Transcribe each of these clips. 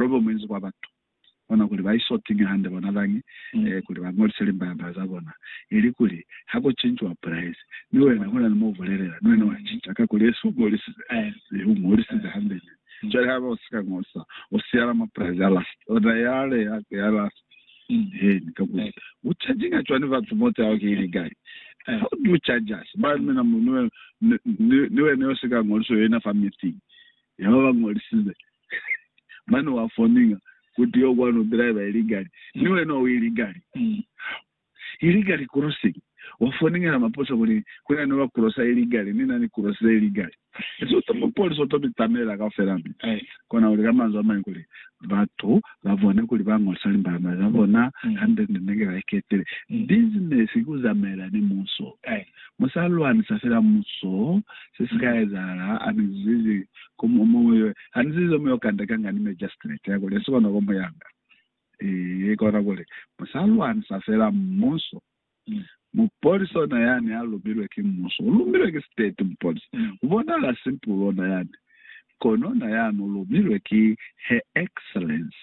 Lobo muinzi kwa batu bona kuli ba iso tinya hande bona bañi kuli ba ñolise limbalambala za bona, ili kuli ha ku cinciwa pulaisi, mi wena huna ni mo u bulelela, ni wena wa cinca ka kuli esi u ñolisize, mi u ñolisize hande ñwi. Cwale haiba u si ka ñolisa, u siyala mwa pulaisi ya last, ona yale ya ku ya last. Eeni, kakuli u cajiña cwani batu moto yao ki ili kai? Ha u du caja si ba mina mu, ni wena, ni wena yo si ka ñolisa, u yo ina fa meeting ya ba ba ñolisize, mane wa foninga kuti yo kwani u driver illegally ni wena u illegally illegally crossing wa foninga na maposa kuli kuna ni ba crossa illegally ni na ni crossile illegally so to mupolisa u to mi tsamaela kaufela mi kona kuli ka manzwi a mañi kuli batu ba bone kuli ba ngolisa limbalama za bona hande ni nenge ba iketile business ki ku zamaela ni muso. Mu sa lwanisa fela muso, se si ka ezahala, a mi zizi, ku mu, mu, ha ni zizi mu yo kanda kanga ni magistrate ya kuli, si kona ku mu yanga. Ee, kona kuli, mu sa lwanisa fela muso. Mupolisi ona yani a lumilwe ki muso, u lumilwe ki state, mupolisi. U bonahala simple ona yani, kono ona yani u lumilwe ki Her Excellence.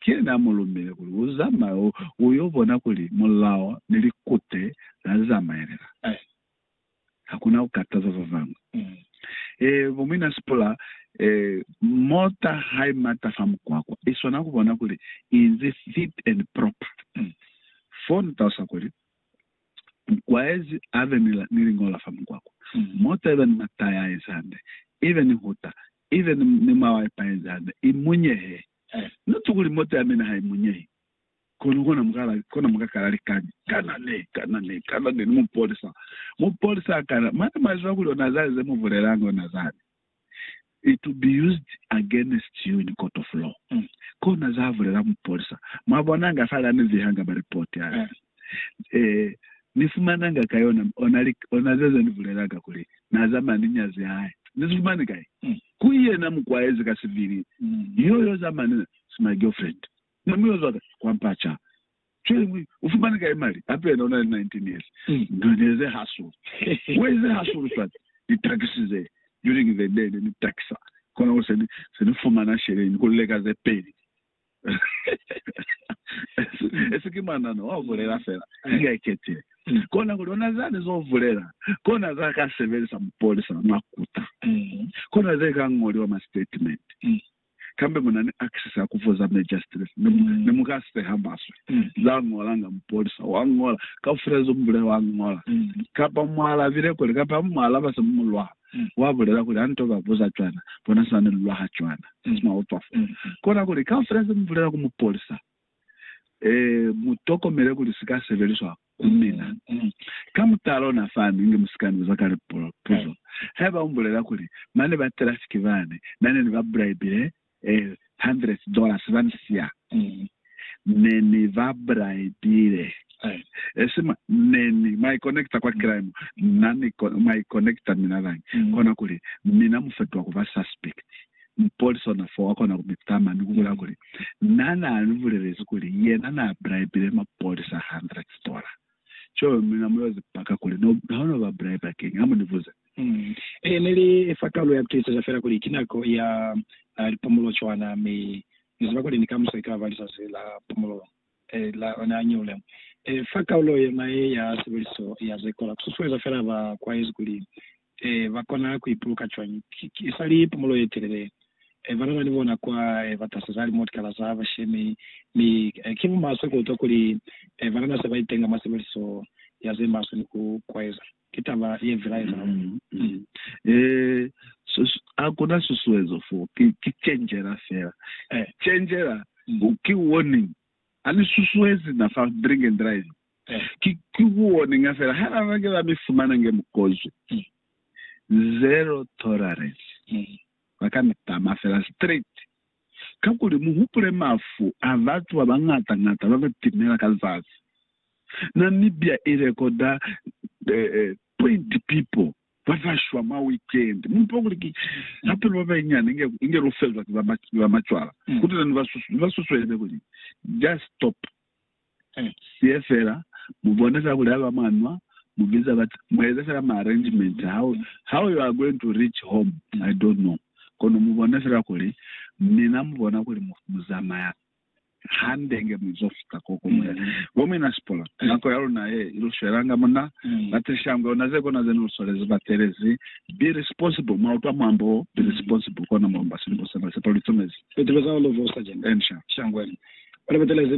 Ki yena a mu lumile kuli u zamaye u yo bona kuli mulao ni likute la zamaelela. Ha ku na ku kataza ba bañwi. Ee, bo muina Sipula, ee, mota ha i mata fa mukwakwa, i swana ku bona kuli i inzi fit and proper. Fo ni talusa kuli, Mukwaezi a be ni, ni lingola fa mukwakwa. Mota i be ni mataya a inzi hande, i be ni huta, i be ni, ni mwawa ipa yenzi hande, i munyehee. Na twa kuli mota ya mina ha i munyehi, kono kona mu kala, kona mu ka kala likani. Kana ne, kana ne, kana ne, ni mupolisa, mupolisa a kana. Mane mwa ziba kuli ona zani ze mu bulelanga, ona zani, It will be used against you in court of law. Kona za bulela mupolisa. Mwa bona nga fale ani vihanga maripoti ani. Ee, Ni fumananga kai ona, ona, ona zeza ni bulelaka kuli Na zamaya ni nyazi ya hae? Ni si fumani kai? Ku yena mu kwaezi ka sivili, yo, yo zamaya ni na. It's my girlfriend. Ne mu yo zwa ka kwa mpa ca. Cwale mu ufumani kai mali? Hape yena una ni 19 years. Ndu ne ze hasulu. Why ze hasulu cwale? Ni taxi ze, during the day ne ni taxa, kona kuli se ni, se ni fumana sheleni ku leka ze peli. Esi ki mwanano wa bulela fela inge ikete. Kona kuli ona zani zo bulela, kona za ka sebelisa mupolisa mwa kuta, kona ze ka ngoliwa mwa statement. Kambe mu na ni access ya ku vuza magistrate ne mu ka seha maswe za ngolanga mupolisa. Wa ngola kaufela ze mu bulela, wa ngola kapa mwa alabile kweli kapa ha mu mu alaba se mu mu lwala. wa bulela kuli, Ha nto ba buza cwana, bona sina ni lulwa ha cwana. Kona kuli, kaufela ze mu bulela ku mupolisa, mu tokomele kuli si ka sebeliswa ku mina. Ka mutalo, na fani inge mu si ka ni buza kale puzo. Haiba mu bulela kuli, Mane ba trafiki bani na ne ni ba bulaibile hundreds dollars ba ni siya ne ni ba bribile esi mwa ne ni mwa i connecta kwa crime na ni mwa i connecta mina bañi kona kuli mina mu fetuha kuba suspect mupolisi ona foo akona ku mi tama ni ku bulaya kuli na na ni bulelezi kuli yena na bribile mapolisa hundreds dollars. Cwalo mi na mu yoze paka kuli no, ha no ba bulai ba keñi. Ha mu ni buze. Ee, ne li fa talu ya ku tiiseza fela kuli ki nako ya lipumulo cwana, mi Ni ziba kuli ni kamuso ikala ba lizazi la pumulo la ona ya ñeule. Fa kaulo yona ye ya sebeliso ya ze kola, ku susueza fela ba kwaezi kuli ee, ba kona ku ipuluka cwañi? Ki, ki isali pumulo ye telele, ee, ba nana ni bona kwa, ee, ba taseza limotikala za bashemi, mi, ee, ki mo maswe ku utwa kuli, ee, ba nana se ba itenga mwa sebeliso ya ze maswe ni ku kwaeza. Ki taba ye vilaezaho. Mm. Ee, sus, ha ku na susuezo fo. Ki, ki cenjela fela. Ee. Cenjela, ki warning. Ha ni susuezi na fa drink and driving. Ki kuoninga fela ha na nake ba mi fumana nge mukozo ki zero tolerance. Ba ka mi tama fela straight. Kakuli muhupule mafu a batu ba bañata-ñata ba ba timela ka zazi. Namibia i rekoda 20 people ba ba shwa mwa weekend. Mu ipa kuli ki hapelo ba banyinyani inge inge lu fezwa ki ba macwala. Kutuna ni ba susu ni ba susueleze kuli just stop siye fela mubona za kulaya ba mwanwa mu biza ba mueza fela ma arrangement how how you are going to reach home I don't know kono mubona fela kuli mina mubona kuli mu muzamaya hande nge muzo fita koko mule bo mina sipola nako ya luna ye ilu swelanga muna ba teshangwe ona ze kona zenu luswalezi ba telezi be responsible mwa utwa mwambo wo be responsible kona mulomba silibo sena sepa lu itomezi fiti beza ulu vusa jena and sha shangwe ole ba telezi